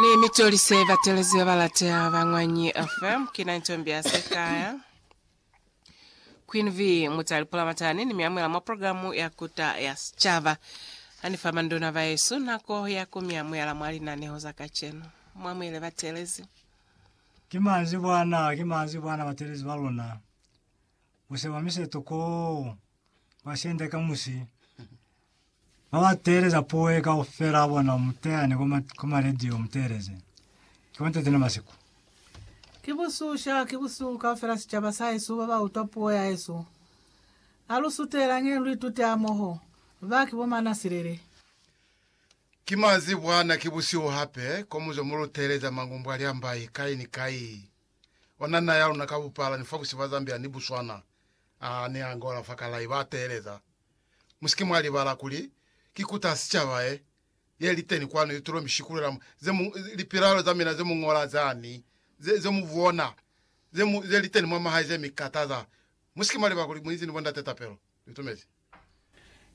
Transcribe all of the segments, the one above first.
Ni mi tolise batelezi ba balatea ba Ñwanyi FM. Ki na Ntombi ya Sekaya, Queen V, Mutali Pulamatani, ni mi amuela mwa programu ya Kuta ya Sicaba. Ha ni fa manduna ba yesu nako ya ku mi amuela mwa linaneho za kacenu. Mu amuele batelezi. Ki manzibwana, ki manzibwana batelezi ba luna. Muse wa miseto koo. Ba shende ka musi ba ba teeleza puo ye kaufela ha bona mu teane kwa ma, kwa ma radio mu teeleze. Ki bonte tsena masiku. Ki bususha, ki busuku kaufela sicaba sa hesu ba ba utwa puo ya hesu. A lu sutelange lu itute hamoho. Ba ki bo Manasilele. Ki mazibwa na ki busihu hape, ko mu zwa mu lu teeleza mangumbwa liambai kai ni kai. Onani na ya luna ka bupalani fa busihu bwa Zambia ni Botswana. A ne a ngola fa kalai ba teeleza, Musike mwa libala kuli ki kuta ya sicaba ye, ye li teni kwanu litulo mi shikulela ze mu, lipilaelo za mina ze mu ngola zani, ze, ze mu bona, ze mu, ze li teni mwa mahae ze mi kataza. Musike mwa libala kuli mu inzi ni bo Ndate Tapelo. Litumezi.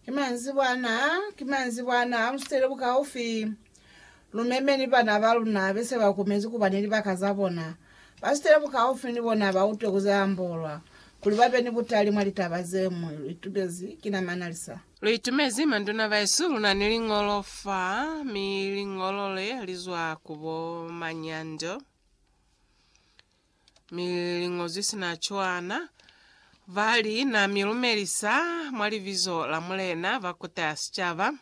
Ki manzibwana, ki manzibwana a musitele bukaufi. Lumeme ni bana baluna bese bakomezi kuba ni libaka zabona. Basitele bukaufi ni bona bautwe kuzeambolwa, kuli babe ni butali mwa litaba zemwi. Luitumezi? Kina manalisa. Luitumezi, manduna baesu. Luna ni liñolo fa, mi liñolo le lizwa ku bo Manyando. Mi liñozwi sina cwana, ba li, Na mi lumelisa mwa Libizo la Mulena, ba kota ya sicaba.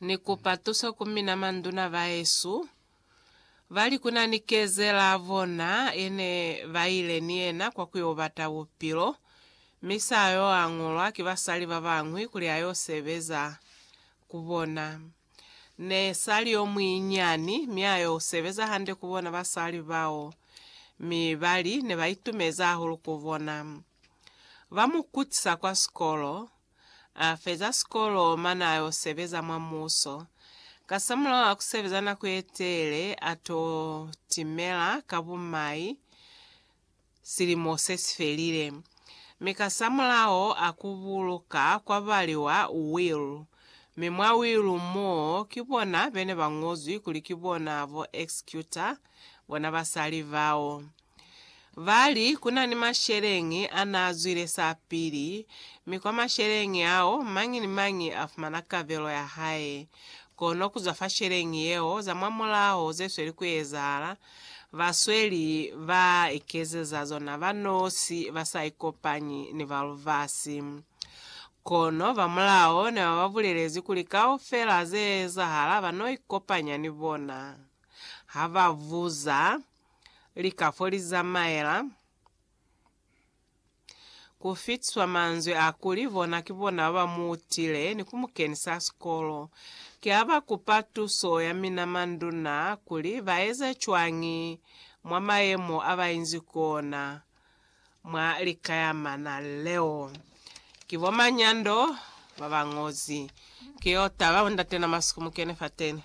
Ni kupa tuso ku mina manduna baesu. Ba li, Kuna ni kezela bona yene ba ile ni yena kwa ku yo bata Bupilo, mi sa yo angulwa ki basali ba bañwi kuli a yo sebeza ku bona. Ne sali yo muinyani, mi ayo usebeza hande ku bona basali bao, mi bali ne ba itumezi ahulu ku bona. Ba mu kutisa kwa sikolo. A feza sikolo mane ayo sebeza mwa Muso. Kasamulaho a kusebeza nako yetelele, ato timela ka bumai. silimo se si felile, mi kasamulaho a ku buluka kwa baliwa will, mi mwa will moo ki bona be ne ba ñozwi kuli ki bona bo executor bona basali bao. Ba li, Ku na ni masheleñi a naa zwile sapili, mi kwa masheleñi ao, mañi ni mañi a fumana kabelo ya hae. Kono ku zwa fa sheleñi yeo, za mwa mulaho ze sweli ku ezahala, Basweli ba ikezeza zona ba nosi, ba sa ikopanyi ni ba lubasi. Kono bamulao ne ba ba bulelezi kuli kaufela ze ezahala ba no ikopanya ni bona. Ha ba buza, Lika fo li zamaela? Ku fitiswa manzwi a kuli bona ki bona ba ba mu utile ni ku mu kenisa sikolo, ki ha ba kupa tuso ya mina manduna kuli ba eze cwañi mwa mayemo a ba inzi ku ona mwa lika ya manani leo. Ki bo manyando ba ba ñozi. Ki yo taba, Bo Ndate na Masuku, Mu Kene Fateni.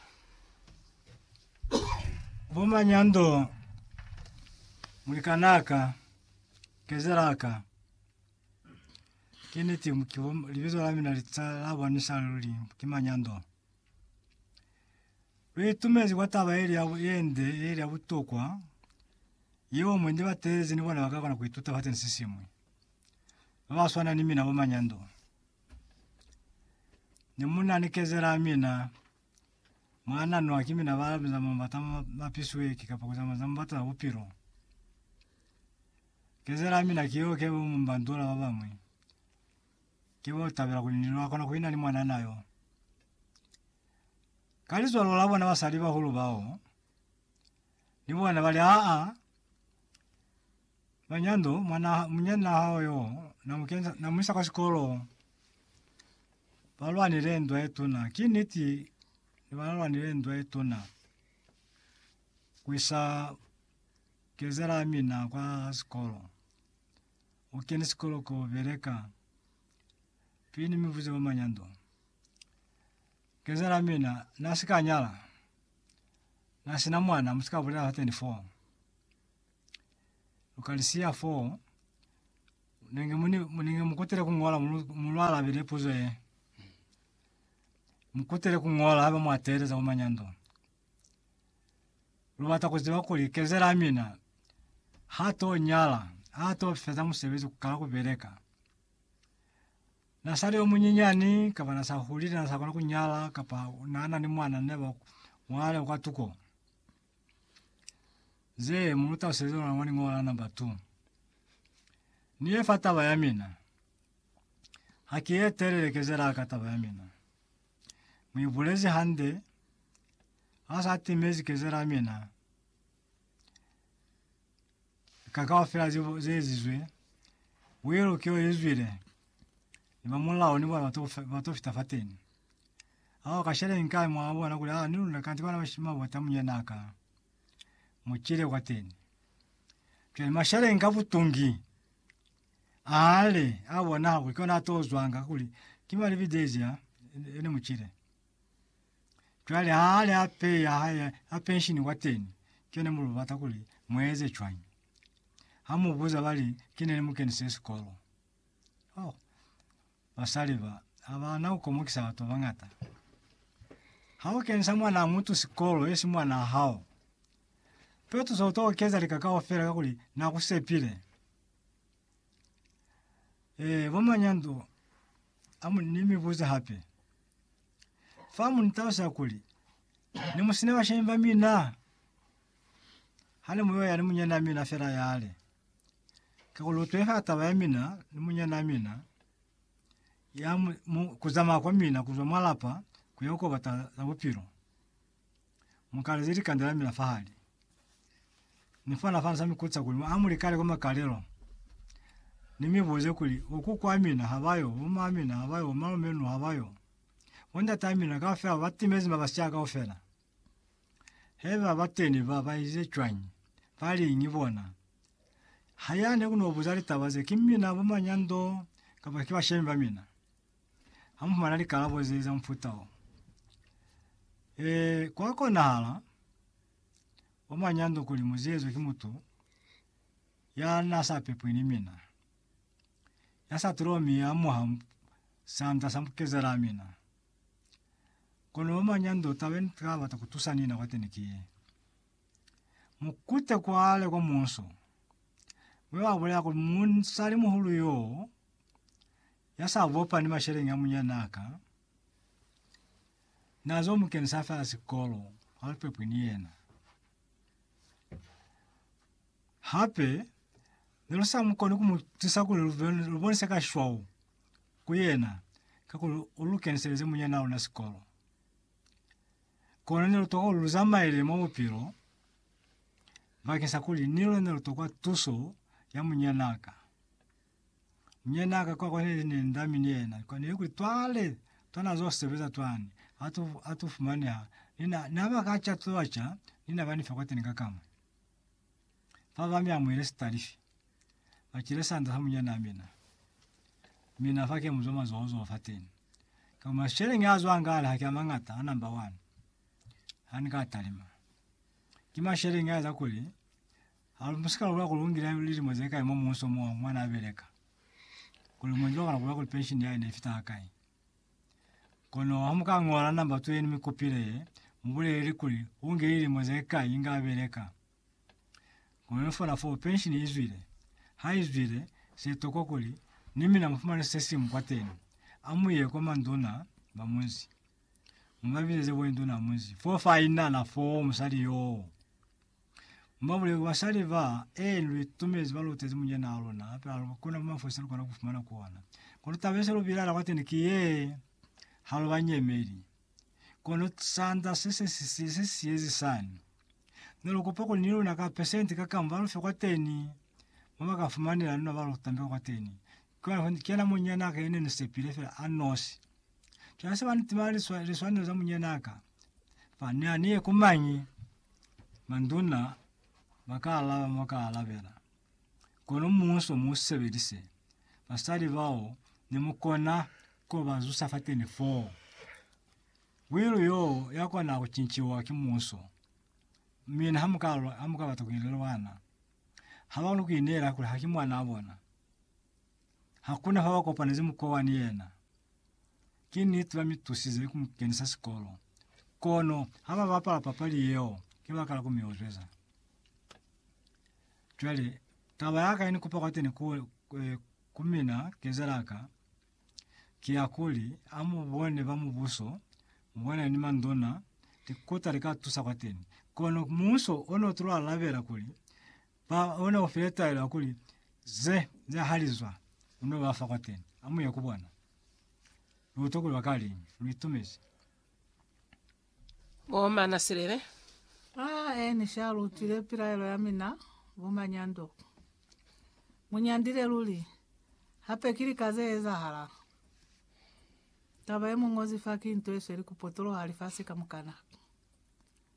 Bo manyando mulikanaka kezelaka ke niti mkibo libizo la mina litsa la bonisa luli ke manyando. Lwi tumezi kwa taba ili ya yende ili ya butokwa yeo mwende batezi ni bona baka kona ku ituta hati nsisimwe. Ba ba swana ni mina bo manyando. Ni muna ni kezela mina Mwa nanwa ki mina ba za mu bata ba pisweki kapa ku zama za mu bata za bupilo. Kezelo ya mina ki yo ke bo mu bandola ba bamwi. Ke bo tabela kuli ni lwa kona ku ina ni mwa nana yo. Ka lizwalo la bona basali bahulu bao, ni bona bali aa, Manyando, mwana, munyana hao yo, namukenza, namuisa kwa sikolo. Balwanile ndwa e tuna. Ki niti, ni balwanile ndwa e tuna. Kuisa kezela mina kwa sikolo. O kene sikolo ko beleka. Pini mivuze wa manyando. Kezela mina, nasika nyala. Nasina mwana, musika bulela hata ni four. Lukalisia fo nenge muni nenge mukutile kungola mulwala bile puzo ye mukutile kungola aba mwatele za umanyando lubata kuziba kuli kezela mina hato nyala hato feza musebezi kukala kubeleka nasali omunyinyani kaba nasa hulile nasakalo kunyala kapa unana ni mwana nebo mwale ukatuko. Ze mu lu taluseze lona mwa lingoho la number 2. Ni ye fa taba ya mina. Ha ki ye telele kezela ka taba ya mina. Mu ibulezi hande. Ha sa timezi kezela mina. ka kaufela ze, ze ezizwe, wilo ki yo izwile, ni ba mulao ni bona bato, ba to fita fateni. A o ka sheleñi kai mwa bona kuli a ni luna kanti bana bashima bo tamunye na ka mu cile kwateni? Cwale masheleñi ka butungi ale a bonahala kuli ki ona a to zwanga, kakuli ki malibi days a, e ne mu cile. Cwale ha ale a pay ya hae ya pension kwateni, kene mu lu bata kuli mu eze cwañi? Ha mu buza ba li, Ki neli mu kenise sikolo. Oh, basali ba, ha ba na ku komokisa batu ba bañata. Ha u kenisa mwanaa mutu sikolo, yesi mwanaa hao. Petusa u tokeza lika kaufela kakuli na ku sepile. Ee mwa manyando amu ni mi buza hape. Fa mu ntalusa kuli ne mu sina basheemi ba mina, ha ne mu yo ya ni munyanaa mina fela yale. Ka ku lutwe fela taba ya mina ni munyanaa mina, ya mu, mu ku zamaya kwa mina ku zwa mwa lapa ku ya ku yo bata za bupilo. Mukalezi likanda la mina fahali. Ni fana fana sa mikutsa kuli mu amu likale kwa makalelo. Ni mi buze kuli, Oku kwa mina ha ba yo, bo ma mina ha ba yo, bo malume nu ha ba yo. Bo ndata mina kaufela ba timezi maba siya kaufela. Haiba ba teni ba, ba ezile cwañi? Ba liñi bona? Ha ya ne ku no buza litaba ze, ki mina bo manyando kapa ki bashemi ba mina? Ha mu fumana likalabo ze za mufuta o, e, kwa konahala o manyando kuli mu ziezwe ki mutu ya na sa pepwi ni mina, ya sa tulwa mi ya amuha sanda sa mukezela mina. Kono o manyando taba ye ni ka bata ku tusa ni na kwateni ki ye, Mu kute kwale kwa munso, mi wa bulela kuli musalimuhulu yo, Ya sa bopa ni masheleñi a munyanaa ka na zo mu kenisa fela sikolo, ha lu pepwi ni yena. Hape ne lu sa mu koni ku mu tusa kuli lu, be, lu bonise ka shwau ku yena ka kuli u lu keniselize munyanaa luna sikolo. Kono ne lu tokwa kuli lu zamaele mwa bupilo bakeng sa kuli ni luna ne lu tokwa tuso ya munyanaa ka. Nyen'a ka kwa kone li ne ndami ni yena, kwa ne kuli twale twa na zo sebeza twani, ha tu, ha tu fumaneha, ni na, na ba ka ca tloha ca, ni na ba ni fa kwateni ka kamwe. Fa ba mi amuhile sitalifi, ba kile sanda sa munyan'a mina, mi na fa kemuzwa mazoho zoho fateni. Ka kwa masheleñi a zwanga hali haki a mangata, a namba wani, ha ni ka talima. Ki masheleñi a eza kuli Ha lu si ka lula kuli u ngile lilimo ze kai mwa muuso mo mwa n'a beleka, kuli mu ngile kona ku lula kuli pensheni ya hae ne i fita hakai. Kono ha mu ka ñola namba tso ye ni mi kupile ye, mu buleleli kuli u ngile lilimo ze kai inge a beleka. Kono ni fona foo pensheni i zwile. Ha i zwile, se tokwa kuli ni mina mu fumane se siñwi kwateni, a mu ye kwa manduna ba munzi, mu ba bizeze bo induna a munzi, fo fa inana foo musali yoo. Mabulelo, Basali ba ee lu itumezi ba lutezi munyana wa luna, hape ha lu koni kuma fo se lu kona ku fumana ku ona. Kono taba ye se lu bilaela kwateni ki ye, ha lu ba nyemeli. Kono sanda se se si se siyezi sani. Ne lu kupa kuli ni luna ka pesenti kakamba ba lu fe kwateni, mo ba ka fumanela luna ba lu tambeka kwateni. Ki yena munyana ka ye ne ni sepile fela a nosi. Cwale se ba ni timela liswanelo za munyana ka. Fa ni ani ye ku mañi, manduna ba ka alaba mo ka alabela. Kono muuso mu sebelise basali bao ne mu kona ko ba zusa fateni foo. Wilu yoo ya kona ku cinciwa ki muuso. Mina ha mu ka, ha mu ka bata ku ilelwana, ha ba kona ku ineela kuli ha ki mwanaa bona. Hakuna fa ba kopanezi mukwa wa ni yena. Ki niti ba mi tusize ku mu kenisa sikolo, kono ha ba bapala papali yeo ki ba kala ku mi ozweza. Cwale, taba ya ka ye ni kupa kwateni ku, ku mina keza la ka, ki ya kuli a mu bone ba mubuso, mu bone ni manduna, likota li ka tusa kwateni. Kono mubuso o no tulo alabela kuli, Ba ona ku file taelo ya kuli, Ze za ha li zwa, u no ba fa kwateni. Amuye ku bona. Lu utwa kuli ba ka liñi. Lu itumezi. Bo Manasilele. A Eni sha lu utwile pilaelo ya mina, bo Manyando. Mu nyandile luli. Hape ki lika ze ezahala. Taba ye mu ñozi fa ki nto ye sweli ku potoloha lifasi kamukana.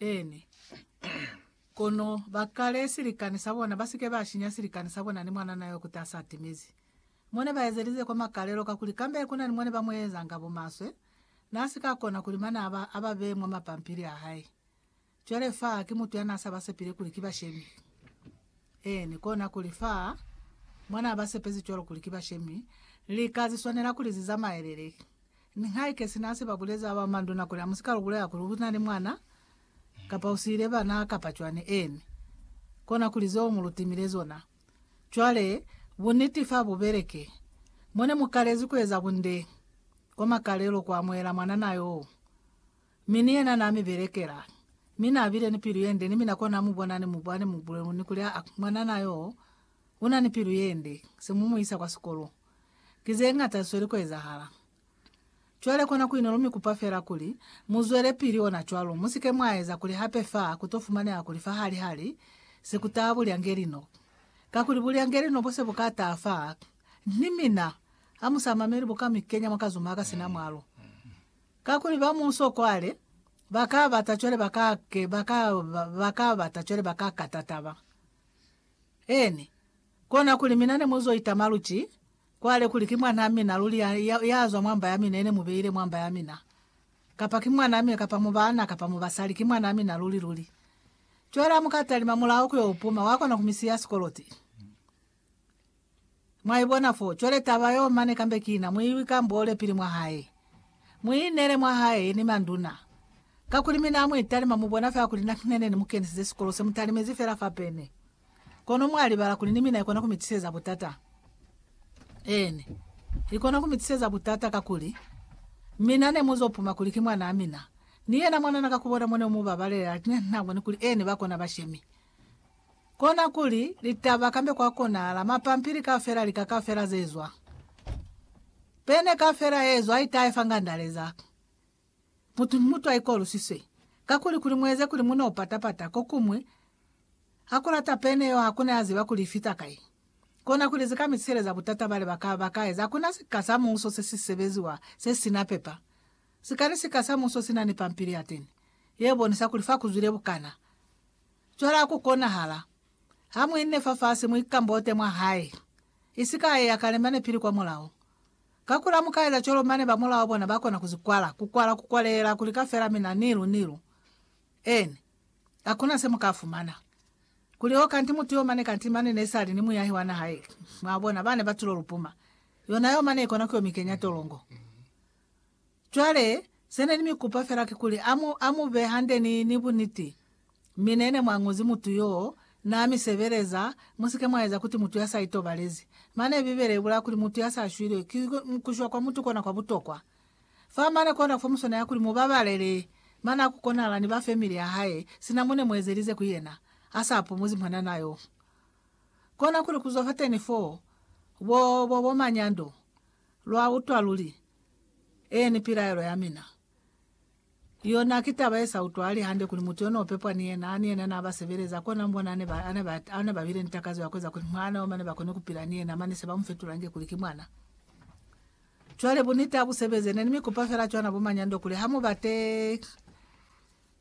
Eeni. Kono ba kale silikani sa bona, ba si ke ba sinya silikani sa bona ni mwanana yo ku taha sa timezi. Mo ne ba ezelize kwa makalelo, kakuli kambe ku na ni mo ne ba mu ezanga bumaswe, n'a si ka kona kuli mana a ba, a ba bee mwa mapampili a hae. Cwale fa ki mutu ya n'a sa ba sepile kuli ki bashemi. Eeni, kona kuli fa mwa n'a ba sepezi cwalo kuli ki bashemi, lika zi swanela kuli zi zamaelele. Nihaike sina se ba bulezi a ba manduna kuli, Hamusika lu bulela kuli u na ni mwana, kapa u siile bana, kapa cwani, eni, kona kuli zeo mu lu timile zona. Cwale, buniti fa bu beleke. Mo ne mu kalezi ku eza bunde, kwa makalelo, ku amuhela mwanana yoo. Mi ni yena na mi belekela. Mi na bile ni pilu ye nde, ni mina kona mu bona ni mu bwa ni mu bule, ni kuli, Aa, mwanana yoo, u na ni pilu ye nde, se mu mu isa kwa sikolo. Ki ze ñata ze sweli ku ezahala. Cwale kona ku inolo mi kupa fela kuli mu zwelepili ona cwalo, mu si ke mwa eza kuli hape fa ku to fumaneha kuli fa hali hali se ku taha bulyangeli no. Kakuli bulyangeli no bo se bu ka taha fa ni mina ha mu sa mameli bu ka mi kenya mwa kazuma ka sina mwalo. Kakuli ba muso kwale ba ka bata cwale ba ka ke, ba ka, ba ka bata cwale ba ka kata taba. Eni, kona kuli mina ne mu zo ita maluci, kwale kuli ki mwanaa mina luli ya, ya, ya zwa mwa mba ya mina yene mu beile mwa mba ya mina, kapa ki mwanaa mina, kapa mu baana, kapa mu basali, ki mwanaa mina luli, luli. Cwale ha mu ka talima mulaho ku yo upuma, wa kona ku mi siya sikoloti. Mwa i bona fo, cwale taba yeo mane kambe kina, mu i kambole pili mwa hae. Mu i nele mwa hae ni manduna. Kakuli mina ha mu i talima, mu bona fela kuli na kina ne ni mu kenisize sikolo se mu talimezi fela fa pene. Kono mwa libala kuli ni mina i kona ku mi tiseza butata. Eeni, i kona ku mi tiseza butata kakuli mina ne mu zo puma kuli ki mwanaa mina. Ni yena mwanana ka ku bona mo ne mu ba balela, ne ni nako ni kuli, Eeni, ba kona bashemi. Kona kuli, litaba kambe kwa konahala, mapampili kafela, lika kafela zezwa, pene kafela yezwa aitaye fa ngandale za mutu ni mutu aikolusiswe, kakuli kuli mueze kuli mune upata pata, kokumwi hakulata pene yo hakuna yaziba kuli ifita kai. Kona kuli zika misele za butata bale baka bakaeza, hakuna sika sa muuso sesisebeziwa sesina pepa, sika ni sika sa muuso sinani pampili yateni yebonisa kuli fa kuzwile bukana. Cwale ha ku konahala, ha mu ine fafasi, mu ikambote mwa Hae, isika aeya kale mane pili kwa mulao. Kakula mu ka eza cwalo mane ba mulao bona ba kona ku zi kwala, ku kwala, ku kwaleela kuli kafela mina ni lu, ni lu. Eeni. Hakuna se mu ka fumana. Kuli, Oh, kanti mutu yo mane, kanti mane ne sa li ni muyahi wa naha ye. Mwabona, ba ne ba tulo lupuma. Yona yo mane ikona ku yo mikenya tolongo. Cwale, se ne ni mi kupa fela kikuli amu, amu be hande ni, ni buniti. Mi ne, ne mwa ñozi mutu yo na mi sebeleza, musike mwa eza kuti mutu ya sa itobalezi. Mane Bibele ibulaya kuli mutu ya sa shwile, ki, ki, ku shwa kwa mutu kona kwa butokwa. Fa mane kona fa muswana ya kuli mu babalele, mane a ku konahala ni ba family ya hae, sina mo ne mu ezelize ku yena, a sa pumuzi mwanana yo. Kona kuli ku zwa fateni foo, bo, bo, bo manyando. Lwa utwa luli? Eeni, pilaelo ya mina. Iyo na ki taba ye sa utwahali hande kuli mutu yo no pepwa ni yena, ni yena na ba sebeleza, kona mu bona ane ba, ane ba, ane ba bile ni takazo ya kueza kuli mwana yo mane ba kone ku pila ni yena, mane se ba mu fetula nge kuli ki mwana. Cwale buniti ha bu sebeze. Ne ni mi kupa fela cwana bomanyando kuli ha mu bate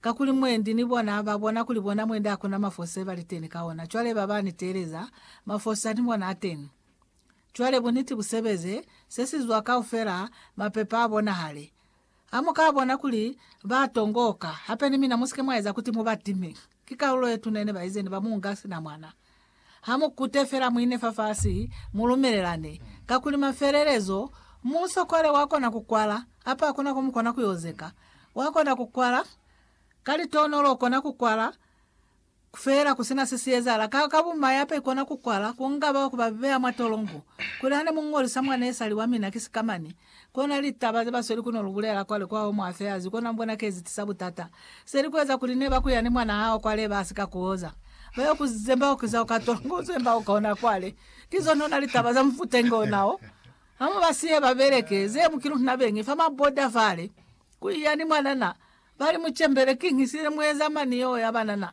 Kakuli mwendi ni bona ba bona kuli bona mwendi hakuna mafose ye ba li teni ka ona, cwale ba ba ni teeleza, mafose a ni bona a teni. Cwale buniti bu sebeze, se si zwa kaufela, mapepa a bonahale. Ha mu ka bona kuli ba tongoka, hape ni mina mu si ke mwa eza kuti mu ba time. Ki kalulo ye tuna ye ne ba ize, ne ba mu nga sina mwana. Ha mu kute fela muine fafasi, mu lumelelane, kakuli mafelelezo, musokwale wa kona ku kwala, apa hakuna ko mu kona ku yo zeka. Wa kona ku kwala, ka litono lo kona ku kwala, fela ku sina se si ezahala. Ka, ka bumai apa i kona ku kwala, ku nga ba wa ku ba beya mwa tolongo. Kuli ha ne mu ñolisa mwanesali wa mina ki sikamani, Kona litaba zebasweli ku no lubulela kwale kwa hao mwa feazi kona mbona ke zitisa butata. Seli kueza kuli neba kuya ni mwana hao kwale ba sika kuoza. Bayo ku zemba ho kiza uka twa ngo zemba ho kona kwale. Ki zonona litaba za mufuta inge ona o. Ha mu ba siye ba beleke ze mu kilu na beñi fa ma boda fale. Ku iya ni mwanana. Bali mu chembele kiñi sile mueza mani yo ya banana.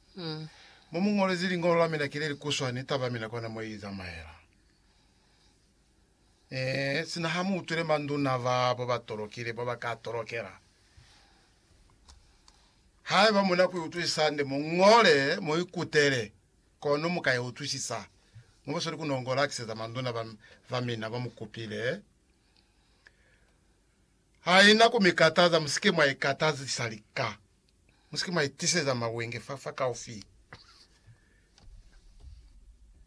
Mo mu ñolezi liñolo la mina ki le li kuswa ni taba ya mina kona mo i zamaela. Ee, sina ha mu utwile manduna ba bo ba tolokile, bo ba ka tolokela. Haiba mu na ku i utwisisa hande, mu ñole, mu i kutele, kono mu ka i utwisisa. Mu ba sweli ku nongola ki seza manduna ba, ba mina ba mu kupile. Haina ku mi kataza, musike mwa ikatazisa lika, musike mwa itiseza mawenge fa fa kaufi.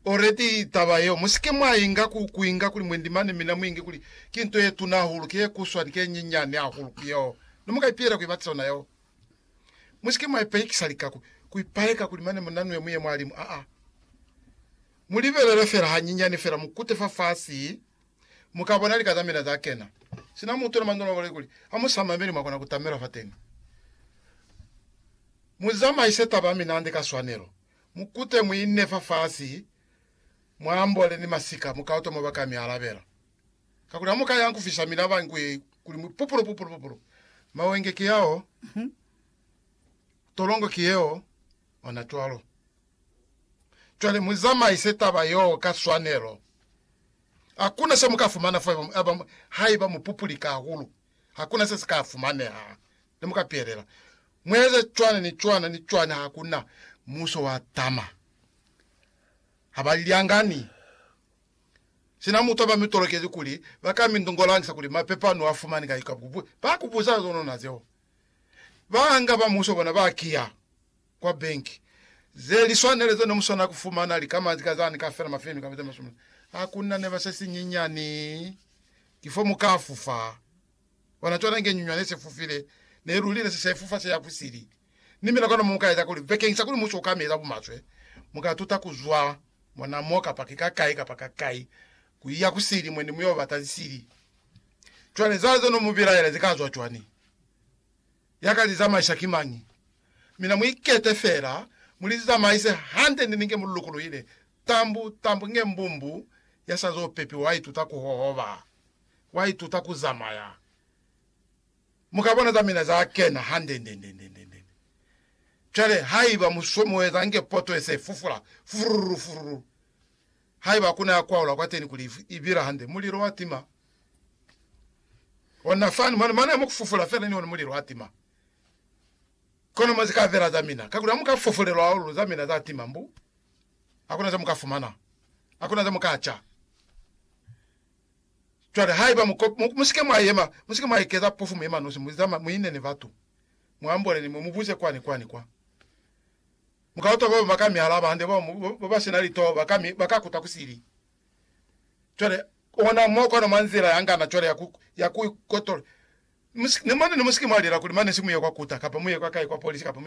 Already taba yeo musike mwa inga ku ku inga kuli mwendi mane, mina muinge kuli ki nto ye tuna hahulu, ki ye kuswa ni ki ye nyinyani hahulu ku yeo ne muka ipiyela ku ibatisa ona yeo. Musike mwa ipayekisa lika, ku ku ipayeka kuli mane muna nue muye mwalimu, aa. Mu libelele fela hanyinyani fela, mu kute fafasi. Mu ka bona lika za mina za kena sina mutu na manzwi a mabule kuli, Ha mu sa mameli, mwa kona ku tamela fateni. Mu zamaise taba ya mina hande ka swanelo. Mu kute mu inne fafasi, mwa ambole ni masika, mu ka utwa mwa baka mi alabela. Kakuli ha mu ka ya ku fisa mina ba ngu ye kuli mu pupulu, pupulu, pupulu. Mawenge ki ao, tolongo ki yeo, ona cwalo. Cwale mu zamaise taba yoo ka swanelo. Hakuna se mu ka fumana fo haiba, haiba mu pupulika hahulu. Hakuna se si ka fumaneha. Ne mu ka pielela. Mu eza cwana ni cwana ni cwana, hakuna muso wa tama. Ha ba lyangani. Sina mutu aba mi tolokezi kuli ba ka mi ndungolangisa kuli mapepa nu a fumani kai ka bubu, ba ku buza zonona zeo. Ba hanga ba muso bona ba kiya. kwa benki ze li swanele ze ne mu swana ku fumana likamanzi ka zani kafela mafemi kaba ze masumi a ku nna ne ba se sinyinyani ki fo mu ka fufa ona cwana inge nyunywana se fufile ne lulile se se fufa se ya ku sili ni mina kona mu ka eza kuli bekeng sa kuli musu u ka mi eza bumaswe mu ka tuta ku zwa mona mo kapa ki ka kai kapa ka kai ku iya ku sili mwe ni mu yo bata sili cwale za ze no mu bilaela ze ka zwa cwani Ya ka li zamaisa ki mañi? Mina mu ikete fela, mu li zamaise hande nde ni nge mu li lukuluhile, tambu, tambu, nge mbumbu ya sa zo pepiwa. Wa ituta ku hohoba. Wa ituta ku zamaya. Mu ka bona za mina za kena hande nde, nde, nde, nde, nde. Cwale, haiba mu somueza nge poto ye se fufula, furururu, furururu. Haiba ku na ya kwaula kwateni kuli i bila hande, mulilo wa tima ona fani mane, mane amu ku fufula fela ni ona mulilo wa tima. Kono mwa zikaavela za mina, kakuli amu ka fufulelwa hahulu za mina za tima, mbu hakuna ze mu ka fumana, hakuna ze mu ka ca. Cwale haiba mu, mu, mu sike mwa yema, mu sike mwa ikeza pofu mu yema nosi, mu zama, mu ine ni batu, mu ambole ni mwe, mu buze kwani kwani kwa. Mukauta baba baka mi alaba hande bao baba sina litoho baka mi baka kuta kusili. Cwale, ona mo kona mwa nzila ya ngana cwale ya ku, ya ku ikotola. Ni mone ni musiki mwa lela kuli mane simuye kwa kuta, kapa muye kwa kai kwa polisi, kapa muye.